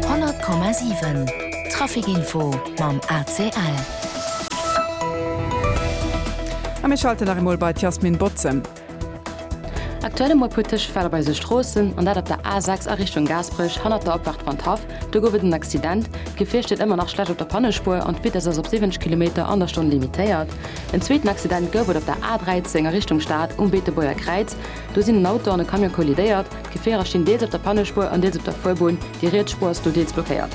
100,7 Trafic Info mam ACL. A mir schalten nach emol bei d'Yasmin Bozem. Aktuell emol e puer Tëschefäll op eise Stroossen, an dat op der A6 a Richtung Gaasperech hannert der Opfaart Van d'Haff. Do gouf et en Accident. D'Gefier steet ëmmer nach schlecht op der Pannespuer an d'Vitess ass op 70 Kilometer an der Stonn limitéiert. En zweeten Accident gouf et op der A13 a Richtung Stad um Beetebuerger Kräiz. Do sinn en Auto an e Camion kollidéiert. D'Gefierer stinn deels op der Pannespuer an deels op der Fuerbunn, déi riets Spuer ass do deels blockéiert.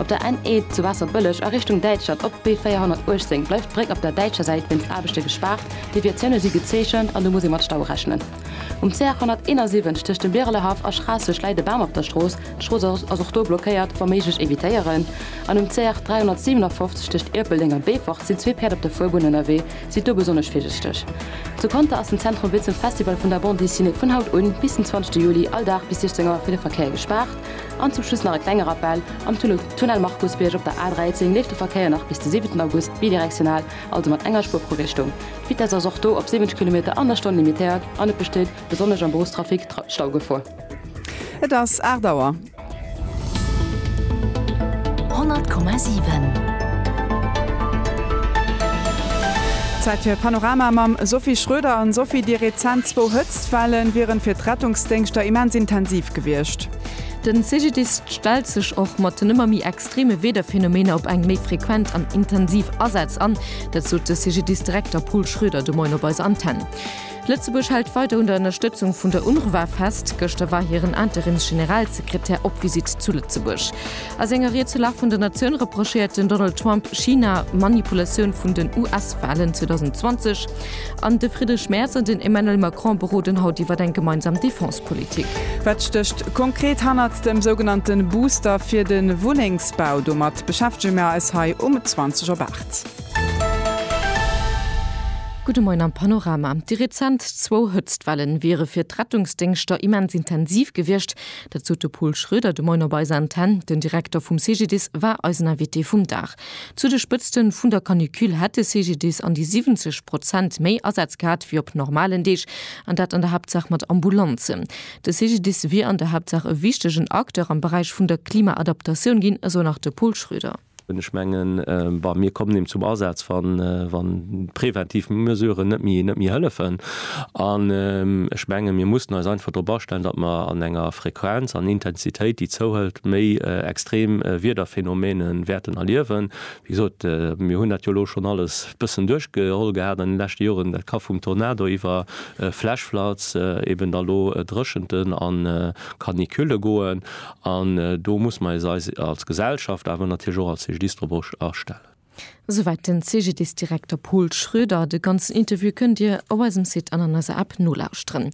Op der NE zu Waasserbëlleg a Richtung Däitschland op d'B 418 bleift d'Bréck op der däitscher Säit wéinst Aarbechte gespaart. Deviatioune si gezeechent an do muss ee mat Staue rechnen. Um CR 171 tëscht dem Birelehaff a Schraasseg läit e Bam op der Strooss, d'Strooss ass och do blockéiert, wa méiglech evitéieren. An um CR 357 tëscht Ierpeldeng a Beefort sinn zwee Päerd op der Fuerbunn ënnerwee, Sidd do besonnesch virsichteg! Zu Conter ass den Zentrum wéi zum Festival vun der Bande Dessinée vun haut un bis den 20 Juli all Dag bis 16 Auer fir de Verkéier gespaart. An zum Schluss nach e klenge Rappell, Am Tunnel Tunnel Markusbierg op der A13 leeft de Verkéier nach bis de 7 August bidirektional, also mat enger Spuer pro Richtung. D'Vitesse ass och do op 70 Kilometer an der Stonn limitéiert an et besteet, besonnesch am Beruffstrafic, Staugefor. Et ass 8 Auer. Zäit fir e Panorama mam Sophie Schroeder. An Sophie, déi rezent zwou Hëtztwellen wieren fir d'Rettungsdéngschter immens intensiv gewiescht. Den CGDIS stellt sech och mat den ëmmer méi extreme Wiederphenomener op eng méi frequent an intensiv Asätz an. Dat sot de CGDIS-Direkter Paul Schroeder de Moien op eiser Antenn. Lëtzebuerg hält weider un der Ënnerstëtzung vun der UNRWA fest. Gëschter war hiren Interims-Generalsekretär op Visitt zu Lëtzebuerg. A senger Ried zur Lag vun der Natioun reprochéiert den Donald Trump China Manipulatioun vun den US-Walen 2020. An de Friedrich Merz an den Emmanuel Macron beroden haut iwwer eng gemeinsam Defense-Politik. Wat stécht konkret hannert dem sougenannte Booster fir de Wunnengsbau? Domat beschäftege mir eis hei um 20 op 8. Gudde Moien am Panorama. Déi rezent zwou Hëtztwellen wiere fir d'Rettungsdéngschter immens intensiv gewiescht. Dat sot de Pol Schröder de Moien op eiser Antenn. Den Direkter vum CGDIS war eisen Invité vum Dag. Zu de Spëtzte vun der Canicule hätt de CGDIS an déi 70 Prozent méi Asätz gehat wéi op normalen Deeg, an dat an der Haaptsaach mat Ambulanzen. De CGDIS wier an der Haaptsaach e wichtegen Acteur am Beräich vun der Klimaadaptatioun ginn, esou nach de Pol Schröder. Ech mengen, bei mir kommen eben zum Asaz, wa preventiv Mesuren net méi hëllefen. An ech menge mir mussen eis einfach drop astellen, datt mer an enger Frequenz an Intensitéit, déi zouhëlt, méi extrem Wiederphänomene wäerten erliewen. Wéi gesot, mir hunn dat jo elo schonn alles e bëssen duerchgeholl gehat an de leschte Joren. Dat ka vum Tornado iwwer Flash floods, eben da lo Dréchenten a Caniculle goen. An do muss mer eis eis als Gesellschaft, awer natierlech och als CGDIS drop astellen. Esouwäit den CGDIS-Direkter Paul Schroeder. De ganzen Interview kënnt Dir op eisem Site an an eiser App nolauschteren.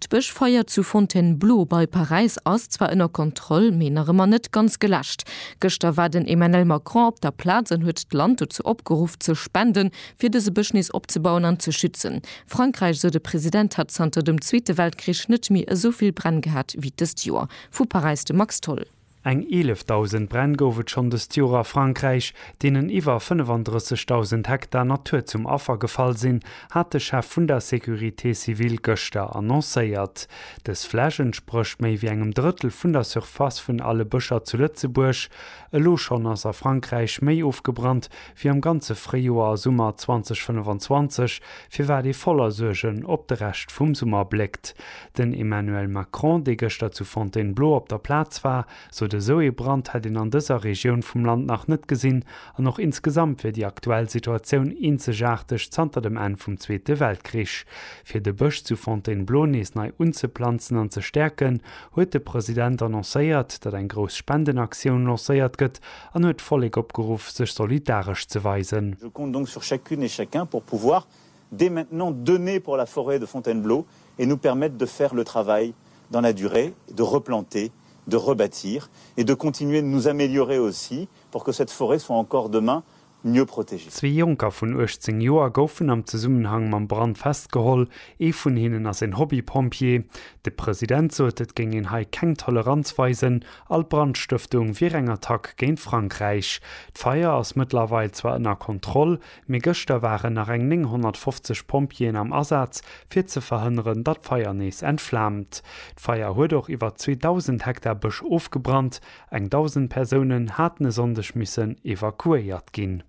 D'Bëschfeier zu Fontainebleau bei Paräis ass zwar ënner Kontroll, mee nach ëmmer net ganz geläscht. Gëschter war den Emmanuel Macron op der Plaz an huet d'Land dozou opgeruff ze spenden, fir dëse Bësch nees opzebauen an ze schützen. Frankräich, esou de President, hat zanter dem Zweete Weltkrich net méi esou vill Bränn gehat wéi dëst Joer. Vu Paräis de Max Tholl. Eng 11.000 Bränn gouf et schonn dëst Joer a Frankräich, deenen iwwer 35.000 Hektar Natur zum Affer gefall sinn, hat de Chef vun der Sécurité civile gëschter annoncéiert. Dës Fläch entsprécht méi wéi engem Drëttel vun der Surface vun alle Bëscher zu Lëtzebuerg. Elo schonn ass a Frankräich méi ofgebrannt wéi am ganze Fréijoer a Summer 2025, firwat ee voller Suergen op de Rescht vum Summer bléckt. Den Emmanuel Macron, dee gëschter zu Fontainebleau op der Plaz war, sot, esou ee Brand hätt een an dëser Regioun vum Land nach net gesinn an och insgesamt wier déi aktuell Situatioun eenzegaarteg zanter dem Enn vum Zweete Weltkrich. Fir de Bësch zu Fontainebleau nees nei unzeplanzen an ze stäerken, huet de President annoncéiert, datt eng grouss Spendenaktioun lancéiert gëtt, an huet d'Vollek opgeruff sech solidaresch ze weisen. Je compte donc sur chacune et chacun pour pouvoir dès maintenant donner pour la forêt de Fontainebleau et nous permettre de faire le travail dans la durée, de replanter, de rebâtir et de continuer de nous améliorer aussi pour que cette forêt soit encore demain mieux protégée. Zwee Jonker vun 18 Joer goufen am Zesummenhang mam Brand festgeholl. Ee vun hinnen ass een Hobby-Pompjee. De President sot, et géing een hei keng Toleranz weisen All Brandstëftung wier eng Attack géint Frankräich. D'Feier ass mëttlerweil zwar ënner Kontroll, mee gëschter waren nach eng 950 Pompjeeën am Asaz, fir ze verhënneren, datt d'Feier nees entflaamt. D'Feier huet och iwwer 2.000 Hektar Bësch ofgebrannt. Eng 1.000 Persounen haten e Sonndeg missen evakuéiert ginn.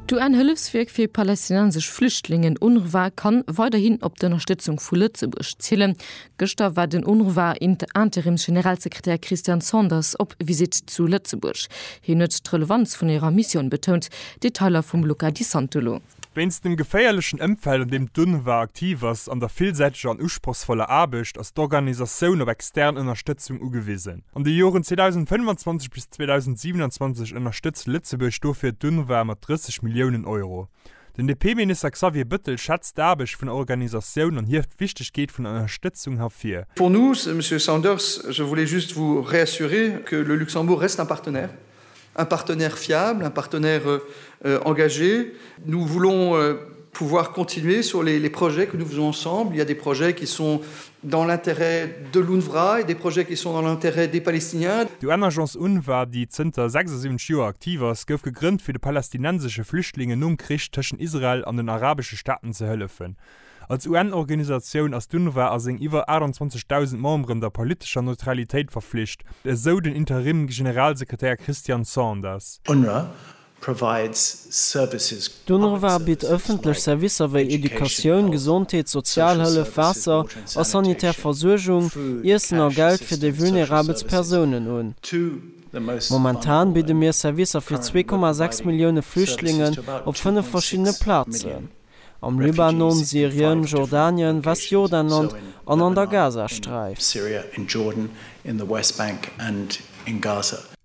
D'UN-Hëllefswierk fir palästinensesch Flüchtlingen, UNRWA, kann weiderhin op d'Ënnerstëtzung vu Lëtzebuerg zielen, Gëschter war den UNRWA Interimsgeneralsekretär Christian Sanders op Visitt zu Lëtzebuerg. Hien huet d'Relevanz vun hirer Missioun betount, Detailer vum Luca Di Santolo. Wéinst dem geféierlechen Ëmfeld an deem d'UNRWA aktiv ass an der villsäiteger an usprochsvoller Aarbecht ass d'Organisatioun op extern Ënnerstëtzung ugewisen. An de Joren 2025 bis 2027 ënnerstëtzt Lëtzebuerg dofir d'UNRWA mat 30 Milliounen Euro. Den DP-Minister Xavier Bëttel schätzt d'Aarbecht vun der Organisatioun an hieft d'Wichtegkeet vun der Ënnerstëtzung hervir. Pour nous, Monsieur Saunders, je voulais juste vous réassurer que le Luxembourg reste un partenaire, un partenaire fiable, un partenaire engagé. Nous voulons pouvoir continuer sur les projets que nous faisons ensemble. Il y a des projets qui sont dans l'intérêt de l'UNRWA et des projets qui sont dans l'intérêt des Palestiniens. D'UN-Agence UNRWA, déi zënter 76 Joer aktiv ass, gouf gegrënnt, fir de palästinensesche Flüchtlingen nom Krich tëschent Israel an den arabesche Staaten ze hëllefen. Als UN-Organisatioun ass d'UNRWA a seng iwwer 28.000 Memberen der politescher Neutralitéit verflicht, esou den Interim-Generalsekretär Christian Sanders. UNRWA provides services, Doniewwer bitt ëffentlech Servicer wéi Educatioun, Gesondheet, Sozialhëllef, Waasser a sanitär Versuergung, Iessen a Geld fir déi vulnerabelst Persounen un. Momentan bidde mir Servicer fir 2,6 Millioune Flüchtlingen op fënnef verschiddene Plazen. am Libanon, Syrien, Jordanien, Westjordanland an an der Gazasträif.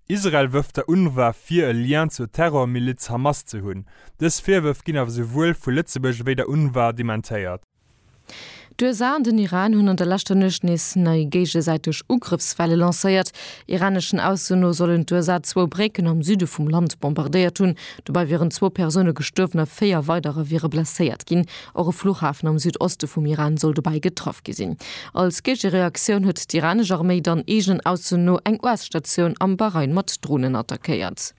Israel wërft der UNRWA vir e Lien zur Terrormiliz Hamas ze hunn. Dës Virwërf ginn awer souwuel vu Lëtzebuerg ewéi der UNRWA dementéiert. D'USA an den Iran hunn an der leschter Nuecht nees nei géigesäiteg Ugrëffswelle lancéiert. Iraneschen Aussen no sollen d'USA zwou Brécken am Süde vum Land bombardéiert hunn. Dobäi wieren zwou Persoune gestuerwen a véier weiderer wiere blesséiert ginn. Och e Fluchhafen am Südoste vum Iran soll dobäi getraff gi sinn. Als Géigereaktioun huet d'iranesch Arméi dann eegenen Aussen no eng US-Statioun am Bahrain mat Dronen attackéiert.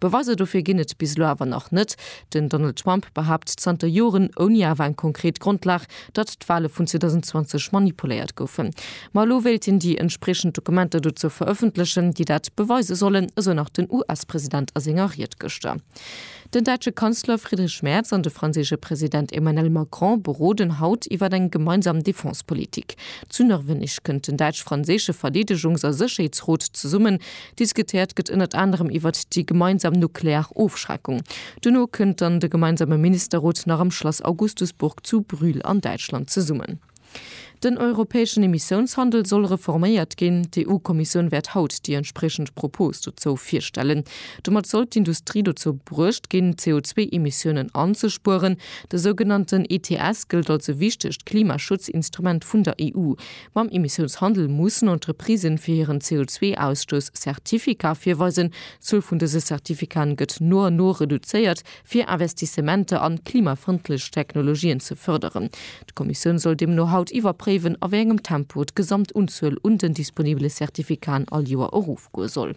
Beweiser dofir ginn et bis elo awer nach net. Den Donald Trump behaapt zanter Joren, ouni awer eng konkret Grondlag, datt d'Wale vun 2020 manipuléiert goufen. Ma elo wéilt hien déi entspriechend Dokumenter dozou verëffentlechen, déi dat beweise sollen, esou nach den US-President a senger Ried gëschter. Den däitsche Kanzler Friedrich Merz an de franséische President Emmanuel Macron beroden haut iwwer eng gemeinsam Defense-Politik. Zu Nërwenneg kënnt den däitsch-franséische Verdeedegungs a Sécherheetsrot zesummen. Diskutéiert gëtt ënnert anerem iwwert déi gemeinsam nuklear Ofschreckung. Duerno kënnt dann de gemeinsame Ministerrot nach am Schlass Augustusburg zu Brühl an Däitschland zesummen. Den europäeschen Emissiounshandel soll reforméiert ginn. D'EU-Kommissioun wäert haut déi entspriechend Propos dozou virstellen. Domat soll d'Industrie dozou bruecht ginn, d'CO2-Emissiounen anzespueren. De sougenannten ETS gëllt als e wichtegt Klimaschutzinstrument vun der EU. Mam Emissiounshandel mussen Entreprisen fir hiren CO2-Ausstouss Certificate virweisen. D'Zuel vun dëse Certificaten gëtt no an no reduzéiert, fir Investissementer an klimafrëndlech Technologien ze fërderen. D'Kommissioun soll deemno haut iwwerpréiwen, a wéi engem Tempo d'Gesamtunzuel un den disponibele Certificaten all Joer erofgoe soll.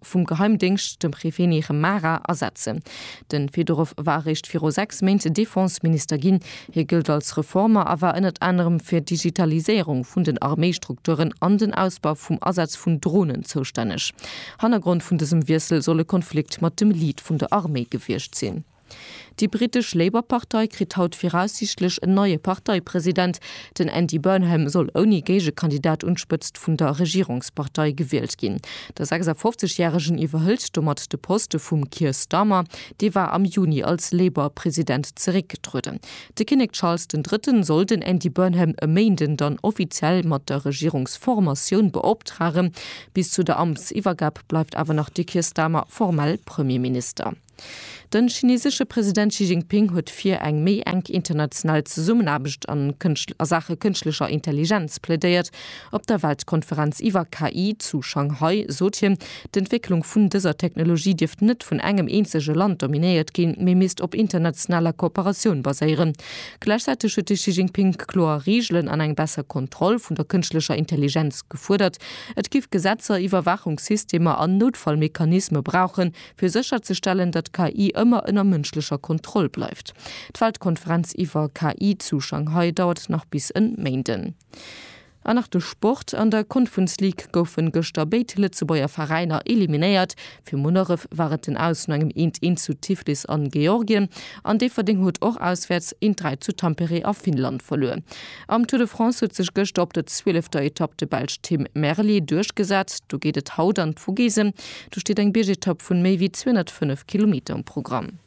vum Geheimdéngscht, dem Hrépheni Rhemara, ersetzen. De Fedorow war eréischt viru sechs Méint Defenseminister ginn. Hie gëllt als Reformer a war ënnert anerem fir d'Digitaliséierung vun den Arméistrukturen an den Ausbau vum Asaz vun Dronen zoustänneg. Hannergrond vun dësem Wiessel soll e Konflikt mat dem Lead vun der Arméi gewiescht sinn. Déi brittesch Labour-Partei kritt haut viraussiichtlech en neie Parteipresident. Den Andy Burnham soll ouni Géigekandidat un d'Spëtzt vun der Regierungspartei gewielt ginn. De 56 Järegen iwwerhëlt domat de Poste vum Keir Starmer. Dee war am Juni als Labour-President zeréckgetrueden. De Kinnek Charles den Drëtten soll den Andy Burnham e Méinden dann offiziell mat der Regierungsformatioun beoptragen. Bis zu der Amtsiwwergab bleift awer nach de Keir Starmer formell Premierminister. Den chinesesche President Xi Jinping huet fir eng méi enk international Zesummenaarbecht a Saache kënschtlecher Intelligenz plädéiert. Op der Weltkonferenz iwwer KI zu Shanghai sot hien, d'Entwécklung vun dëser Technologie dierft net vun engem eenzege Land dominéiert ginn, mee misst op internationaler Kooperatioun baséieren. Gläichzäiteg huet de Xi Jinping kloer Reegelen an eng besser Kontroll vun der kënschtlecher Intelligenz gefuerdert. Et giff Gesetzer, Iwwerwaachungssystemer an Noutfallmechanisme brauchen, fir sécherzestellen, datt d'KI ëmmer ënner mënschlecher Kontroll bleift. D'Weltkonferenz iwwer KI zu Shanghai dauert nach bis en Méinden. An nach de Sport, An der Confuns League goufen gëschter béid Lëtzebuerger Veräiner eliminéiert. Fir Munneref war et den Aus no engem 1, 1 zu Tiflis an Georgien an Déifferdeng huet och auswäerts 1, 3 zu Tampere a Finnland verluer. Am Tour de France huet sech gëschter op der 12 ter Etapp de Belsch Tim Merlier duerchgesat. Do geet et haut an d'Vogesen. Do steet eng Biergetapp vun méi wéi 205 Kilometer um Programm.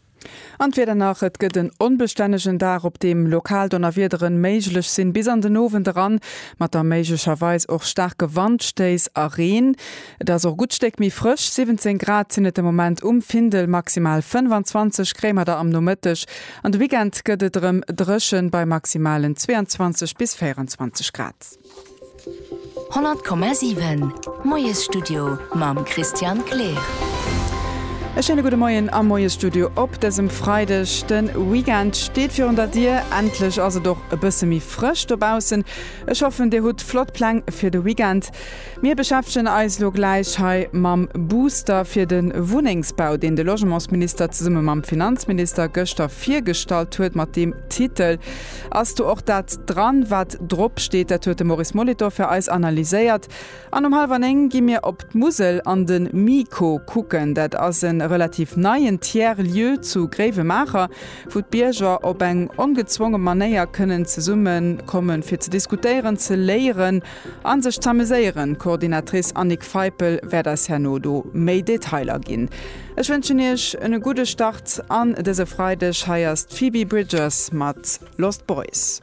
An d'Wieder nach, Et gëtt en onbestännegen Dag, op deem lokal Donnerwiederen méiglech sinn, bis an den Owend eran, mat da méiglecherweis och staarke Wandstéiss a Reen. Et ass och e gutt Stéck méi frësch, 17 Grad sinn et de Moment um Findel, maximal 25 kréie mer da am Nomëtteg. An de Weekend gëtt et erëm dréchen, bei maximalen 22 bis 24 Grad. 100,7 Moiesstudio mam Christian Kleer. E schéine gudde Moien am Moiesstudio op dësem Freideg. De Weekend steet virun der Dier. Endlech ass et och e bësse méi frësch dobaussen. Ech hoffen, Dir hutt flott Pläng fir de Weekend. Mir beschäftegen eis elo gläich hei mam Booster fir de Wunnengsbau, deen de Logementsminister zesumme mam Finanzminister gëschter virgestallt huet, mat deem Titel. Ass do och dat dran, wat drop steet? Dat huet de Maurice Molitor fir eis analyséiert. An um hallwer néng gi mir op d'Musel an de MIKO kucken. Dat ass e relativ neien Tiers lieu zu Gréiwemaacher, wou d'Bierger op eng ongezwonge Manéier kënnen zesumme kommen, fir ze diskutéieren, ze léieren a sech z'ameséieren. D'Coordinatrice Annick Feipel wäert eis herno do méi Detailer ginn. Ech wënschen iech en gudde Start an dëse Freideg. Hei ass d'Phoebe Bridgers mat Lost Boys.